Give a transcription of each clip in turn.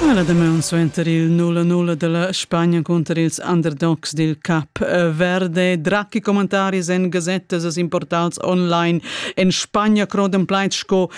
Ha la damaun suenter il nulla-nulla della Spagna cunter ils underdogs dil Cap Verde. Dracchi commentaris en gasettas e importals online. En Spagna croden plaid sco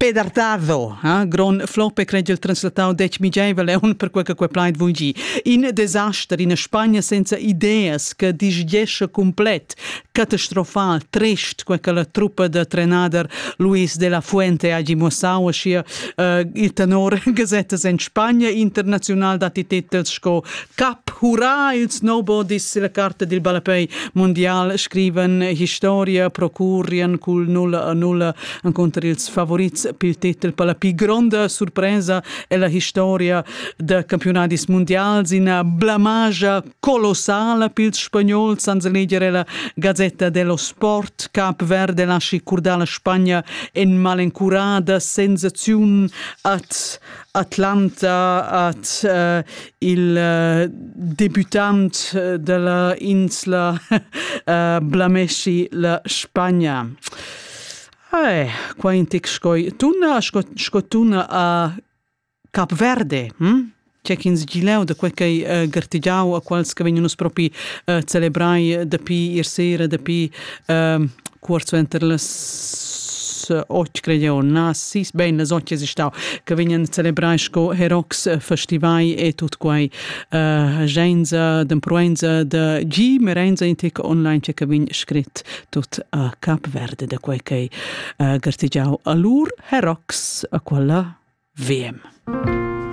pedartado. Ha? Gron flope credil translatau dec migeivel eun per quei che quei plaid vugi. In desaster in Spagna senza ideas che disgesce complet Catastrofal, trist, quei che la truppa da trenader Luis de la Fuente hagi muossau aschia uh, il tenor gasettas en Spagna internazional datti titels sco Cap, hurra il snowboardist la carta dil ballapei mondial scriven historia procurrien cul 0 a 0 encontr ils favorits pil titel per la pli gronda surpresa ella historia da campionadis mondials in blamage colossala pils spagnols ans leger ella Gazetta dello Sport Cap Verde lasci curdar la Spagna en malencurada sensaziun at Atlanta at uh, il uh, debutant della insla uh, blamesci la Spagna. Ai, qua in tec scoi tuna, sco, sco tuna a Capverde, hm? Tge ch'ins gi leu da quei ch'ei uh, gartegiau a quels che vegnan uss propi uh, celebrai dapi ier sera, dapi uh, cuort suenter las otg, cred eu, na, sis, bein, las otg es stau, che vegnan celebrai sco herox eh, festivai e tut quei uh, genza, d'empruenza da gi, merenza in tec online, che vegn scrit tut a Capverde da quei ch'ei uh, gartegiau a lur herox a quella VM.